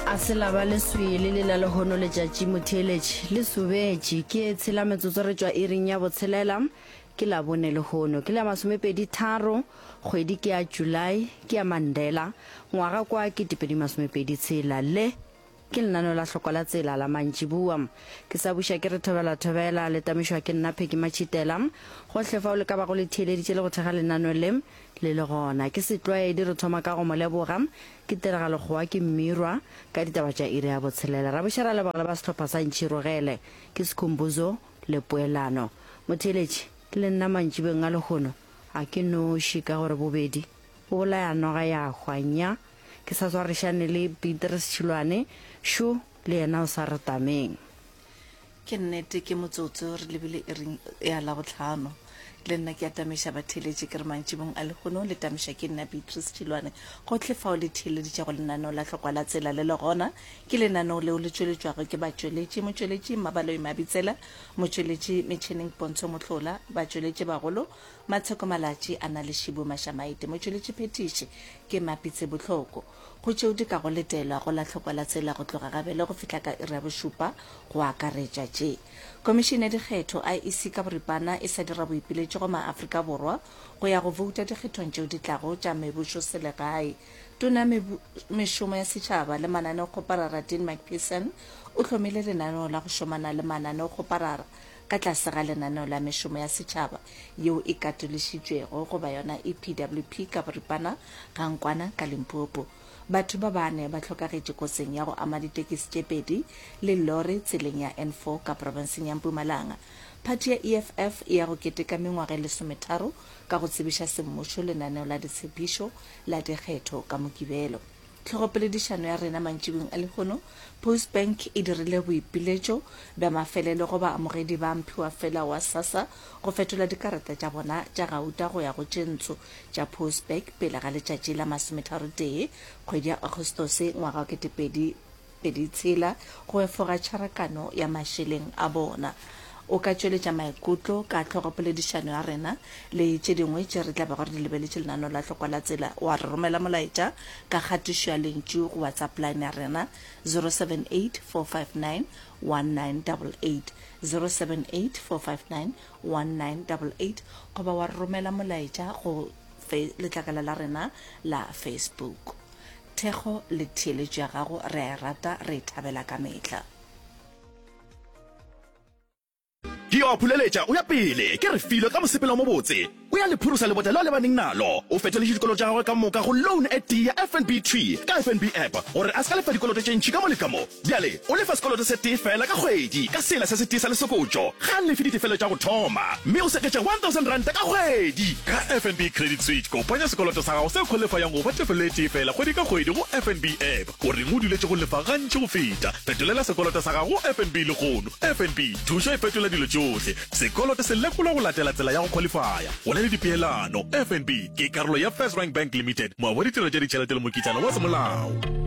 A se la ba leswele le la lehono letšatši motheeletše le sobetše. Ke e tshela metsotso re tšwa iring ya botshelela. Ke Labone lehono. Ke la masomepedi tharo. Kgwedi ke ya July. Ke ya Mandela. Ngwaga kwa ketepedi masomepedi tshela. Le. Ke lenaneo la Hloko la Tsela la mantšibua. Ke sa buša ke re thobela thobela, le tamišwa ke nna Phecky Matšhitela. Gohle fao le ka bago le theeleditše le go thekga lenaneo le, le le gona. Ke setlwaedi re thoma ka go mo leboga. Ke Tiragalekgowa, ke mmirwa ka ditaba tša iri ya botshelela. Ra buša ra leboga le ba sehlopha sa Ntšhirogele. Ke Sikhumbuzo Lepoelano. Motheeletši, le nna mantšibeng a lehono, a ke noši ka gore bobedi Wola ya noga ya hwa, nya ke sa swarišane le Beatrice Tšhilwane, šo, le yena o sa re tameng. Ke nnete, ke motsotso re lebile iring ya Labohlano. Le nna ke a tameša batheeletši ke re mantšibong a lehono le tameša ke nna Beatrice Tšhilwane. Gohle fao le theeleditšego lenaneo la Hlokwa la Tsela le le gona. Ke lenaneo leo le tšweletšwago ke batšweletši, motšweletši Mmabaloi Mabitsela, motšweletši metšhining Pontsho Mohlola, batšweletšibagolo, Matsheko Malatši a na le Shibu Mashamaite, motšweletši phethiši, ke Mapitse Bohloko. Go tšeo di ka go letelwa go la hlokwa la tsela go tloga gabele go fihla ka iri ya bošupa go akaretša tše Komišene ya Dikgetho, IEC, ka boripana e sa dira boipiletšo go Maafrika Borwa go ya go bouta dikgethong tšeo di tlago tša mebošoselegae. Tona ya Mešomo ya Setšhaba le Mananeokgoparara Dean McPherson o hlomile lenaneo la go šomana le mananeokgoparara ka tlase ga Lenaneo la Mešomo ya Setšhaba yeo e Katološitšwego, goba yona EPWP ka boripana, ga Nkwana ka Limpopo. Batho ba bane ba hlokagetše kotsing ya go ama ditekisi tše pedi le lori tseleng ya N4 ka profenseng ya Mpumalanga. Phathi ya EFF e ya go keteka mengwaga e lesometharo ka go tsebiša semmušo lenaneo la ditshepišo la dikgetho ka Mokibelo. Tlhogopoledišano ya rena mantšibung a lehono, Postbank e dirile boipiletšo bja mafelelo go baamogedi ba mphiwa fela wa Sassa go fetola dikarata tša bona tša gauta go ya go tše ntsho tša Postbank pele ga letšatši la masometharotee kgwedi ya Agostose ngwaga wa 2000. Ditsela go efoga tšharakano ya mašeleng a bona. O ka tšweletša maikutlo ka tlhogopoledišano ya rena le tše dingwe tše re tla bego re di lebeletše lenaneong la Hlokwa la Tsela wa re romela molaetša ka kgatišo ya lentšu go WhatsApp line ya rena 078 459 1988, 078 459 1988, goba wa re romela molaetša go letlakala la rena la Facebook. Thekgo le theeletšo ya gago re a e rata, re e thabela ka mehla. Ke yo a phuleletša, o ya pele, ke re filo ka mosepelo o mobotse. O ya le phurusa lebota le a lebaneng nalo. O fetoletše dikoloto tša gagwe ka moka go loan e tee ya FNB Tree ka FNB App gore a se ka lefa dikoloto tše ntši ka mo le ka mo. Bjale o lefa sekoloto se tee feela ka kgwedi ka sela se se tee sa lesokotšo. Ga lefe ditefelo tša go thoma, mme o seketša R1,000 ka kgwedi. Ka FNB Credit Switch, kopanya sekoloto sa gago se kholefayang go ba tefelo e tee feela kgwedi ka kgwedi go FNB app. O reng o duletše go lefa gantši go feta? Fetolela sekoloto sa gago go FNB lehono. FNB, thušo e fetola dilo tšohle. Sekoloto se lekolwa go latela tsela ya go kholefaya. Go na le dipeelano. FNB ke karolo ya FirstRand Bank Limited, moabo wa ditirelo tša ditšhelete le mokitlana wa semolao.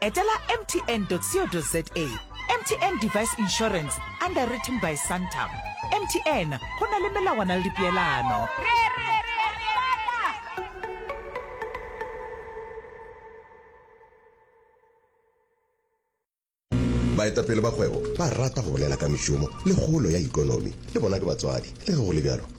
Etela mtn.co.za. Mtn Device Insurance, underwritten by Santam. Mtn, go na le melawana le dipeelano. baetapele ba kgwebo ba rata go bolela ka mešomo le kgolo ya ikonomi le bona ke batswadi le ge go le bjalo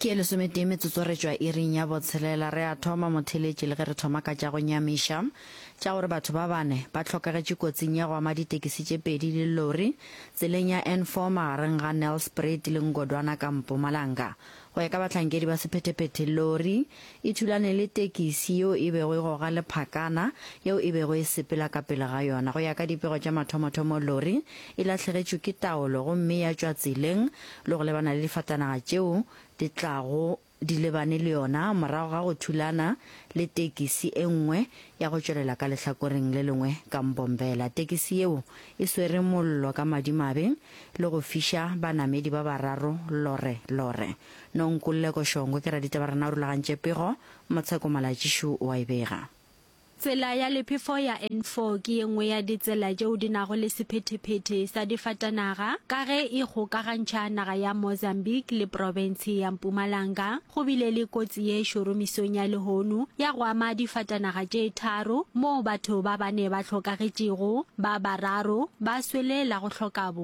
Ke ye lesometee metsotso re tšwa iring ya botshelela, re a thoma motheletši le ge re thoma ka tša go nyamiša tša gore batho ba bane ba hlokagetše kotsing ya go ama ditekisi tše pedi le lori tseleng ya N4 magareng ga Nelspruit le Ngodwana ka Mpumalanga. Go ya ka bahlankedi ba sephetephete, lori E thulane le tekisi yeo e bego e goga lephakana, yeo e bego e sepela ka pele ga yona. Go ya ka dipego tša mathomothomo lori e lahlegetšwe ke taolo gomme ya tšwa tseleng le go lebana le difatanaga tšeo di tlago di lebane le yona morago ga go thulana le tekisi e nngwe ya go tšwelela ka lehlakoreng le lengwe. Ka Mbombela, tekisi yeo e swere mollo ka madimabe le go fiša banamedi ba bararo lore-lore. Nonkululeko Shongwe ke raditaba rena o rulagantše pego, Motsheko Malatsišu o a e bega. Tsela ya lephefo ya N four ke ye nngwe ya ditsela tšeo di nago le sephetephete sa difatanaga ka ge e kgokagantšha naga ya Mozambique le profense ya Mpumalanga. Go bile le kotsi ye šoro mesong ya lehono ya go ama difatanaga tše tharo moo batho ba bane ba hlokagetšego, ba bararo ba swele la go hloka bo.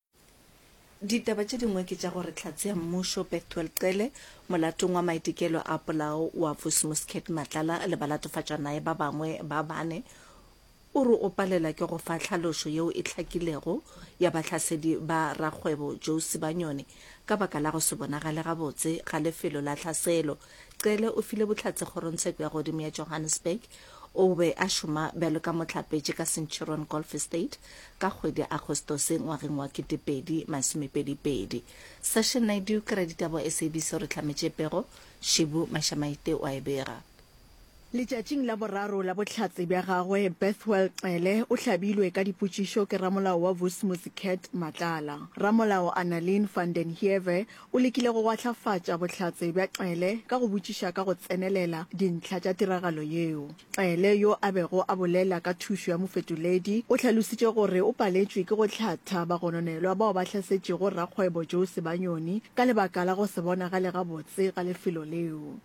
Ditaba tše dingwe ke tša gore Tlhatse ya Mmušo Bethuel Cele, molatong wa maitekelo a polao wa Vusi Musket Matlala le balatofatšwanaye ba bangwe ba bane, o re o palelwa ke go fa tlhalošo yeo e hlakilego ya bahlasedi ba rakgwebo Joe Sibanyoni ka baka la go se bonagale gabotse ga lefelo la tlhaselo Cele o file bohlatse kgorongtsheko ya godimo ya Johannesburg. O be a šoma bjalo ka mohlapetši ka Centurion Golf Estate ka kgwedi ya Agostose ngwageng wa 2022. Session Naidoo ke raditaba wa SABC o re hlametše pego, Shibu Mashamaite wa e bega. Letšatšing la boraro la bohlatse bja gagwe, Bethwell Cele o hlabilwe ka dipotšišo ke ramolao wa Vusmuzi Kurt Matlala. Ramolao Annalene van den Heewe o lekile go gwathlafatša bohlatse bja Cele ka go botšiša ka go tsenelela dintlha tša tiragalo yeo. Cele, yo a bego a bolela ka thušo ya mofetoledi, o hlalositše gore o paletšwe ke go hlatha bagononelwa bao ba hlasetšego rakgwebo Joe Sebanyoni ka lebaka la go se bonagale gabotse ga lefelo leo.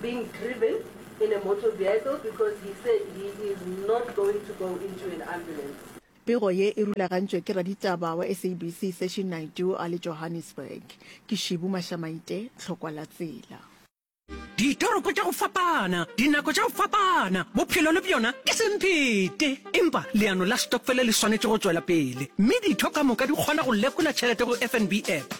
being driven in a motor vehicle because he said he is not going to go into an ambulance. Pego ye e rulagantšwe ke raditaba wa SABC Session Naidoo a le Johannesburg. Ke Shibu Mashamaite, Tlhokwa la tsela. Ditoropo tša go fapana, dinako tša go fapana, bophelo le bjona ke semphete. Empa leano la stokfele le swanetše go tšwela pele, mme ditho ka moka di kgona go lekola tšhelete go FNB App.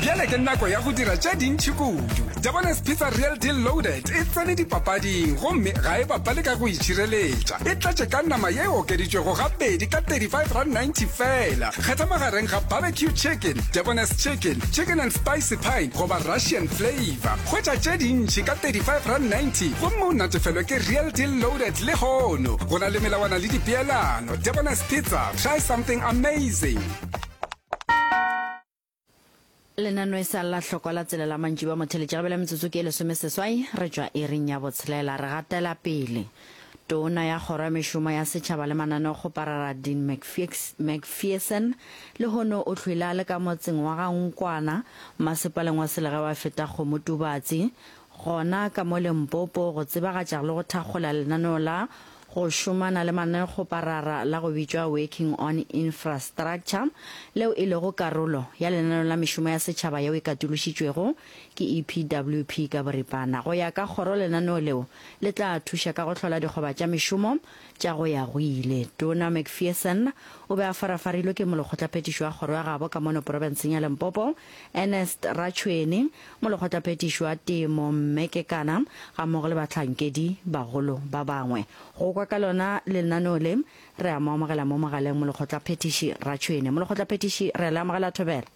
bjale ke nako ya go dira tše dintšhi kudu jabones pizza real deal loaded e tsene dipapading gomme ga e bapale ka go itšhireletša e tlatše ka nama ye e okeditšwego gabedi ka 35 rand 90 fela kgetha magareng ga barbecue chicken jabones chicken chicken and spicy pine goba russian flavor hwetša tše dintšhi ka 35 rand 90 gomme o natefelwe ke real deal loaded le hono go na le melawana le dipeelano jabones pizza try something amazing lenano e sa la hlokwa la tsela la mantši ba motheletša gabela metsotso ke e lesome seswai re tšwa e reng ya botshelela re gatela pele tona ya kgoro ya mešomo ya setšhaba le mananeo kgoparara dean mcpherson le hono o tlhwile a le ka motseng wa gankwana masepaleng wa selege wa feta kgomo tubatsi Gona ka mo Limpopo go tsebagatša le go thakgola lenaneo la go šomana le manegkgoparara la go bitšwa Working on Infrastructure, leo e lego karolo ya lenaneo la mešomo ya setšhaba yeo e katološitšwego ke EPWP ka boripana. Go ya ka kgoro lenaneo leo le tla thuša ka go hlola dikgoba tša mešomo, Tša go ya go ile. Tona McPherson o be a farafarilwe ke molekgotlaphethiši wa kgoro ya gabo ka mono porofenseng ya Limpopo, Ernest Ratšhweni, molekgotlaphethiši wa temo Mme Kekana gammogo le bahlankedi bagolo ba bangwe. Go kwa ka lona lenaneo le, re a mo amogela mo mogaleng molekgotlaphethiši Ratšhweni. Molekgotlaphethiši, re a le amogela thobela.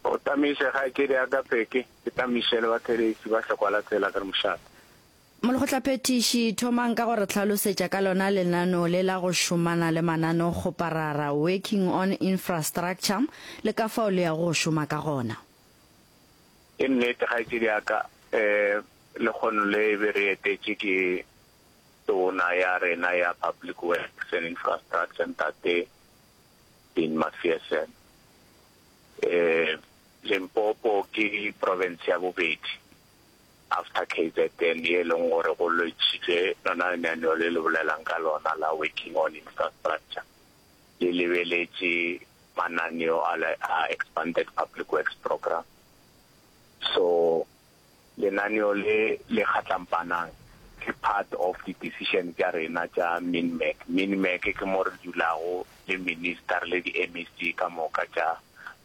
O tamiše kgaetšedi ya ka Phecky. Ke tamišele batheeletši ba Hlokwalatsela ka re mošate. Molekgotlaphethiši, thomang ka go re hlalosetša ka lona lenaneo le la go šomana le mananeokgoparara, Working on Infrastructure, le ka fao le yago go šoma ka gona. Ke nnete kgaetšedi ya ka, lekgono le e be re etetše ke Tona ya rena ya Public Works and Infrastructure Ntate Dean Macpherson. Limpopo ke province ya bobedi. After kzn ye eleng gore go lwetšitšwe lona lenaneo le le bolelang ka lona la Working on Infrastructure le lebeletše mananeo a le a Expanded Public Works Programme. So lenaneo le le kgatlampanang ke part of di decision tša rena tša Minmec. Minmec ke mo re dulago le Minister le di MEC ka moka tša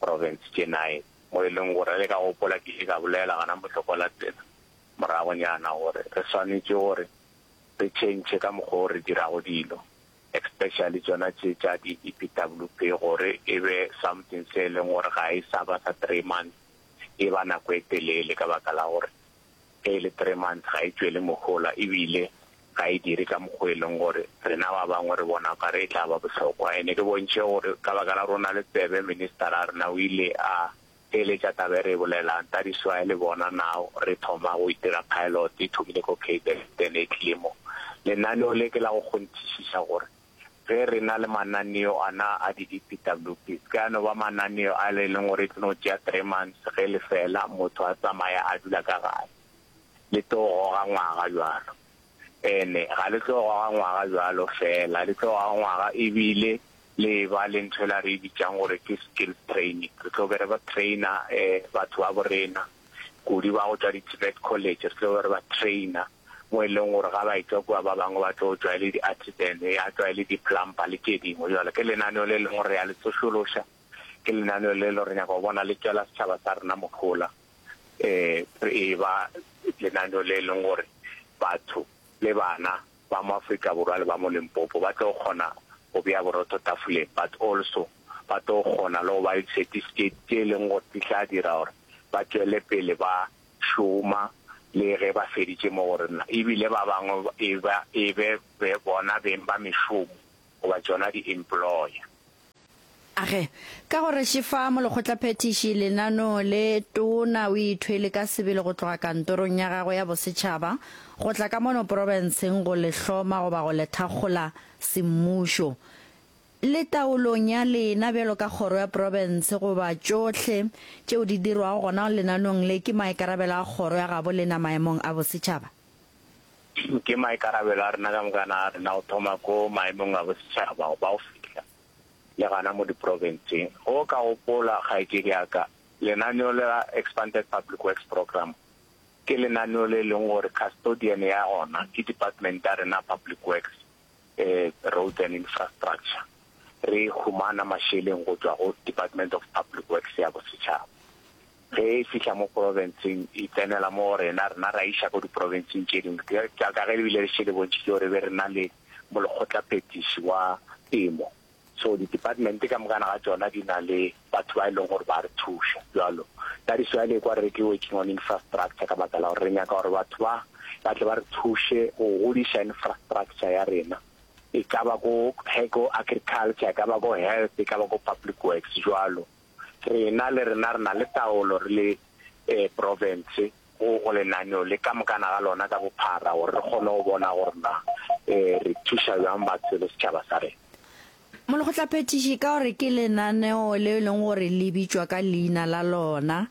Province tše nine. Mo e leng gore ge ka gopola ke ile ka bolela gona bohlokwa la tsela moragonyana gore re swanetše gore re tšhentšhe ka mokgwa o re dirago dilo, especially tšona tše tša di EPWP gore e be something se e leng gore ga e sa ba sa three months e ba nako e telele ka baka la gore ge e le three months ga e tšwele mohola ebile ga e dire ka mokgwa o e leng gore rena ba bangwe re bona okare e tla ba bohlokwa. Ene ke bontšhe gore ka baka la gore o na le tsebe, minister-ra rena o ile a theeletša taba e re e bolelang, that is why le bona now re thoma go itira pilot to Minico KZN e tlile mo. Lenaneo le ke la go kgonthišiša gore ge re na le mananeo ana a di-EPWP, se ka ya no ba mananeo a le leng gore e tlo no tšea three months ge le fela motho a tsamaya a dula ka gae. Le tlo goga ngwaga bjalo. And-e ga le tlo goga ngwaga bjalo fela, le tlo goga ngwaga ebile le e ba le ntho e la re e bitšang gore ke skills training. Re tlo be re ba train-a batho ba bo rena kudu ba go tšwa di-TVET college, re tlo be re ba train-a. mo e leng gore ga ba etšwa kua ba bangwe ba tlo tšwa e le di-artisan, ya tšwa e le di-plumber le tše dingwe. Jwale ke lenaneo le e leng gore re a le tsošološa, ke lenaneo le e leng gore re nyaka go bona le tšwela setšhaba sa rena mohola, um e ba lenaneo le e leng gore batho le bana ba mo Afrika Borwa le ba mo Limpopo ba tlo kgona go bea borotho tafoleng, but also ba tlo kgona le go ba le di-certificate tše e leng gore di tla dira gore ba tšwele pele ba šoma le ge ba feditše mo go rena, e bile ba bangwe e ba e be be bona beng ba mešomo goba tšona di-employer. Age, ka go re šefa mo lekgotlaphethiši lenano le, Tona o ithwele ka sebele go tloga kantorong ya gagwe ya bosetšhaba go tla ka mono porofenseng go le hloma goba go le thakgola semmušo. le taolong ya lena bjalo ka kgoro ya profense goba tšohle tšeo di dirwago gona lenaneong le ke maikarabelo a kgoro ya gabo lena maemong a bosetšhaba? Ke maikarabelo a rena ka moka na a rena go thoma ko maemong a bosetšhaba go ba go fihla le gana mo diprofenseng. Ge o ka gopola, kgaetšedi ya ka, lenaneo le la Expanded Public Works Program ke lenaneo le e leng gore custodian ya gona ke department ya rena ya Public Works. Roads and Infrastructure, re humana mašeleng go tšwa go Department of Public Works ya Bosetšhaba. Ge e fihla mo profenseng, e tsenela mo go rena, rena ra iša ko diprofenseng tše dingwe, ka ge re bile re šele bontšhitše gore be re na le molekgotlaphethiši wa temo. So di department ka mokana ga tšona di na le batho ba e leng gore ba re thuša jwalo. That is why le ekwa re re ke working on infrastructure ka baka la gore re nyaka gore batho ba ba tle ba re thuše go godiša infrastructure ya rena. E ka ba ko he ko agriculture, e ka ba ko health, e ka ba ko public works jwalo. Rena le rena re na le taolo re le province. go, go lenaneo le ka mokana ga lona ka bophara, gore re kgone go bona gore na e, re thuša bjang batho le setšhaba sa rena. Molekgotlaphethiši, ka gore ke lenaneo le e leng gore le bitšwa ka leina la lona,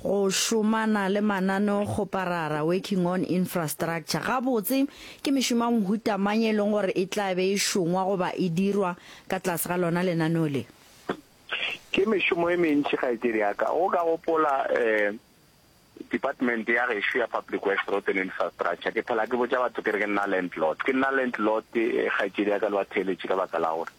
go šomana le mananeokgoparara, working on infrastructure, gabotse ke mešomo ya mohuta mang e leng gore e tla be e šongwa goba e dirwa ka tlase ga lona lenaneo le? Ke mešomo e mentši, kgaetšedi ya ka. O ka gopola um Department ya gešo ya Public Works, Road and Infrastructure. Ke phela ke botša batho ke re ke nna landlord. Ke nna landlord kgaetšedi ya ka le ba theeletše ka baka la gore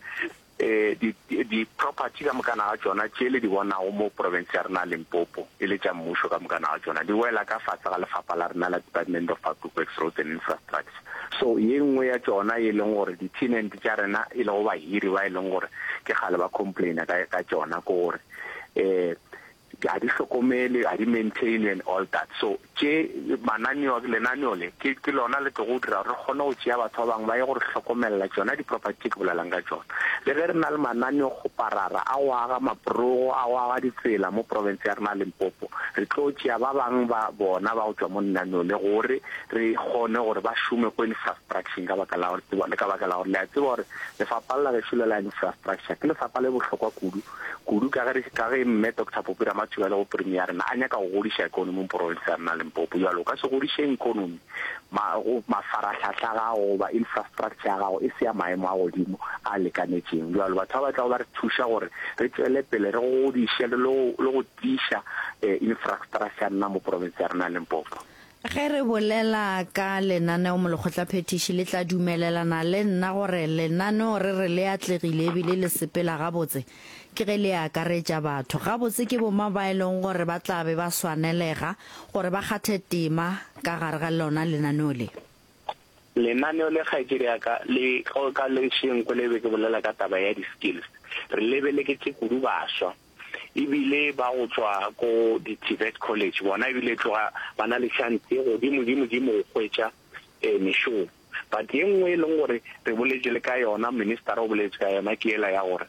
di di property ka mokana ga tšona tše le di bonago mo province ya rena Limpopo e le tša mmušo ka mokana ga tšona di wela ka fase ga lefapha la rena la Department of Public Works, Road and Infrastructure. So ye nngwe ya tšona e leng gore di tenant tša rena e lego bahiri ba e leng gore ke kgale ba complaina ka ka tšona ke gore um ga di hlokomele ga di maintain and all that so tše mananeo lenaneo le ke ke lona le tlo go dira re kgone go tšea batho ba bangwe ba ye gore hlokomela tšona di property tše ke bolelang ka tšona le ge re na le mananeo go parara a go aga maprogo a go aga ditsela mo province ya rena Limpopo re tlo tšea ba bang ba bona ba go tšwa mo lenaneo le gore re kgone gore ba šome ko infrastructure ka baka la gore tsebo le ka baka la gore le a tseba gore lefapha la gešo le la infrastructure ke lefapha le bohlokwa kudu kudu ka ge ka ge Mme Doctor Popi Ramathiba le go Premier ya rena a nyaka go godiša ekonomi mo porofenseng ya rena ya Limpopo. Bjale o ka se godiše ekonomi ma, go, mafarahlahla a gago goba infrastructure ya gago e se ya maemo a godimo a a lekanetšeng. Bjale batho ba ba tlago ba re thuša gore re tšwele pele re godiše le, le go, le go tiiša eh, infrastructure ya rena mo porofenseng ya rena ya Limpopo. Ge re bolela ka lenaneo molekgotlaphethiši le tla dumelelana le nna gore lenaneo re re le atlegile e bile le sepela gabotse ke ge le akaretša batho. Gabotse ke bomang ba e lego gore ba tla be ba swanelega gore ba kgathe tema ka gare ga lona lenaneo le? Lenaneo le kgaetšedi ya ka le tlo ka le šenkwe le be ke bolela ka taba ya di-skills. Re lebelegetše kudu baswa. e bile ba go tšwa ko di TVET college bona e bile e tloga ba na le chance godimo dimo dimo go hwetša eh mešomo. But ye nngwe e leng gore re boletše le ka yona, minister o boletše ka yona ke yela ya gore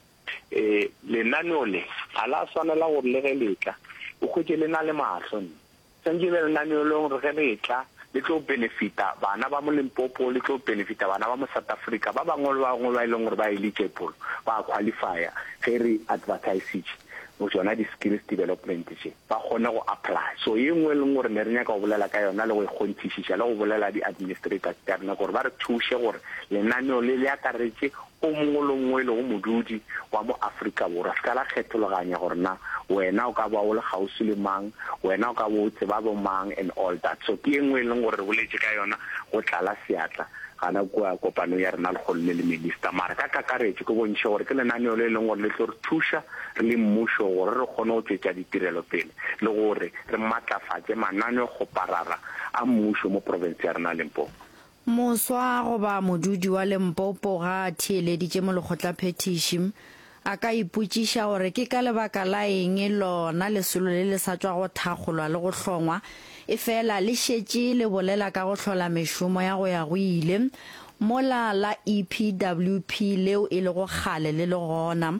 eh lenaneo le ga la swanela gore le ge letla o hwetše le na le mahlo nna. Swantše le lenaneo le gore ge re etla le tlo benefita bana ba mo Limpopo, le tlo benefita bana ba mo South Africa, ba bangwe le ba bangwe ba e leng gore ba eligible, ba qualifya ge re advertisitše go tšona di skills development tše, ba kgone go apply. So ye nngwe e leng gore ne re nyaka go bolela ka yona le go e kgonthišiša le go bolela di administrators tša rena gore ba re thuše gore lenaneo le le akaretše O mongwe le o mongwe o e lego modudi wa mo Afrika Borwa, se ka la kgethologanya gore na wena o ka ba o le kgauswi le mang, wena o ka ba o tseba bo mang and all that. So ke e nngwe e leng gore re boletše ka yona go tlala seatla gana kua kopanong ya rena lekgolo le le Minista. Mara ka kakaretšo ke bontšhe gore ke lenaneo le e leng gore le tlo re thuša re le mmušo gore re kgone go tšwetša ditirelo pele le gore re matlafatše mananeo-kgoparara a mmušo mo profense ya rena ya Limpopo. Moswa goba modudi wa Limpopo ga a theeleditše molekgotlaphethiši, a ka ipotšiša gore ke ka lebaka la eng lona lesolo le le sa tšwa go thakgolwa le go hlongwa efela le šetše le bolela ka go hlola mešomo ya go ya go ile mola la EPWP leo e lego kgale le le gona.